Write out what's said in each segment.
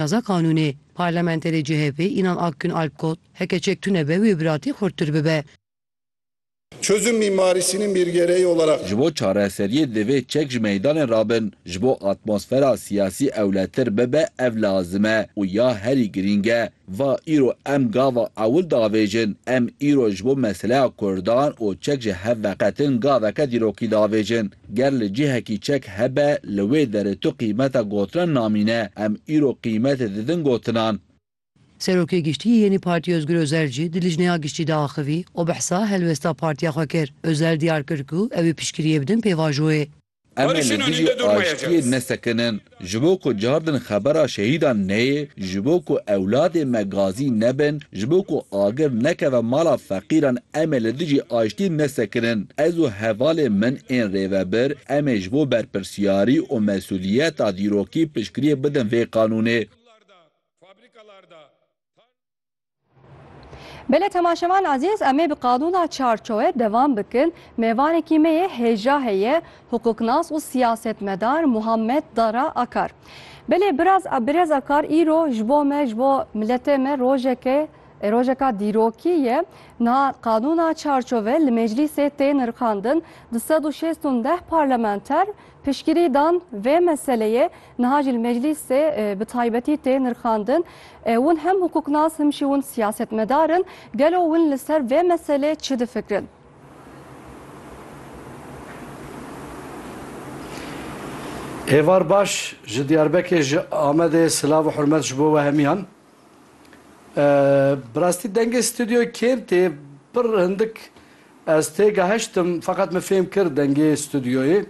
Naza qanûnê. Parlamenterê CHP'ê Inan Akgün Alp got, Heke çek tune be wê biratî xurttir bibe. Çözüm mimarisinin bir gereği olarak. Ji bo çareseriyê divê çek ji meydanê re bin. Ji bo atmosfera siyasî ewletir bibe ev lazim e û ya herî girîng e. Va îro em gava ewil diavêjin. Em îro ji bo meseleya kurdan û çek ji hev veqetin gaveke dîrokî diavêjin. Ger li cihekî çek hebe, li wê derê tu qîmeta gotinan namîne. Em îro qîmetê didin gotinan. Serokê Giştî yê Yenî Partî Ozgur Ozel jî di lijneya giştî de axivî û behsa helwesta partiya xwe kir. Ozel diyar kir ku ew ê piştgiriyê bidin pêvajoyê. Em ê li dijî aştiyê nesekinin. Ji bo ku cardin xebera şehîdan neyê, ji bo ku ewladê me gazî nebin, ji bo ku agir nekeve mala feqîran em ê li dijî aştî nesekirin. Ez û hevalên min ên rêvebir em ê ji bo berpirsiyarî û mesûliyeta dîrokî piştgiriyê bidin vê qanûnê. Belê temaşevan ezîz em ê bi qanûna çarçowe devam bikin. Mêvanekî me yê hêja heye hukuknas û siyasetmedar Muhammed Dara Akar. Belê biraz Birêz Akar îro ji bo me ji bo miletê me rojeke rojeka dîrokî ye. Niha qanûna çarçove li meclîsê tê nirxandin. Di sed û şêst û deh parlamenter piştgirî dan vê meseleyê Niha jî li meclîsê bi taybetî tê nirxandin. Win hem hukuknas him jî win siyasetmedar in. Gelo win li ser vê meselê çi difikirin? Êvar baş ji Diyarbekê ji Amedê silav û hurmet ji bo we hemiyan. Bi rastî dengê stûdyo kêm tê. Pir hindik ez têgehiştim feqet min fêm kir dengê stûdyoyê.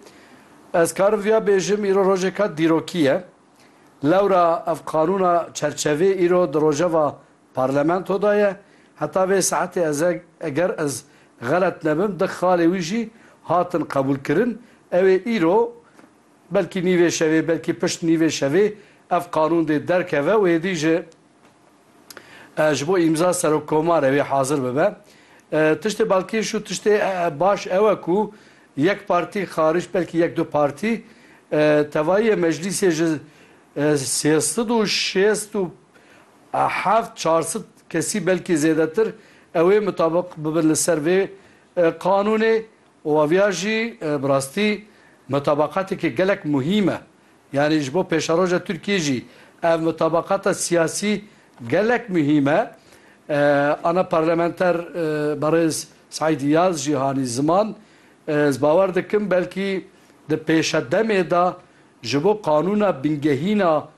Ez karim viya bêjim îro rojêka dîrokî ye. Lewra ev qanûna çerçevê îro di rojeva parlamento de ye. Heta vê saetê ez eger ez xelet nebim di xalê wî jî hatin qebûlkirin. Ew ê îro Belkî nîvê şevê, belkî pişt nîvê şevê ev qanûn dê derkeve û êdî ji ji bo îmza Serokkomarê wê hazir bibe. Tiştê balkêş û tiştê baş ew e ku yek partî xarîc belkî yek du partî tevayîyê meclîsê ji sê sed û şêst û heft çar sed kesî belkî zêdetir ew ê mutabiq bibin li ser vê qanûnê Û aviya jî bi rastî mutabaqatekî gelek muhîm e. Yanî ji bo pêşeroja Tirkiyê jî ev mutabaqata siyasî gelek muhîm e. Ana parlamenter berêz Seîd Îyaz jî hanî ziman. Ez bawer dikim belkî di pêşedemê de ji bo qanûna bingehîna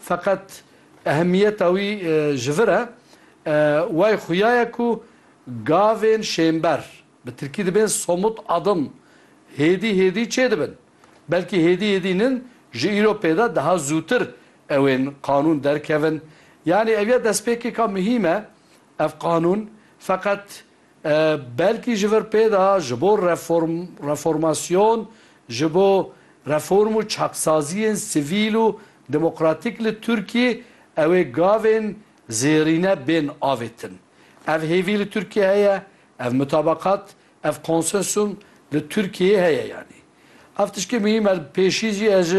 Feqet ehemiyeta wî ji vir e. Way xuya ye ku gavên şênber, bi tirkî dibên somut adım, hêdî hêdî çê dibin. Belkî hêdî hêdî nin ji îro pêda daha zûtir ewên qanûn derkevin. Yanî ev ya destpêkêka muhîm e ev qanûn. Feqet Belkî ji vir pê de ji bo reform, reformasyon, ji bo reform û çaksaziyên sivîl û demokratîk li Tirkiyê ew ê gavên zêrîne bên avêtin. Ev hêvî li Tirkiyê heye, ev mutabakat, ev konsensum li Tirkiyê heye yanî. Ev tişkê muhîm e. Pêşî jî ez ji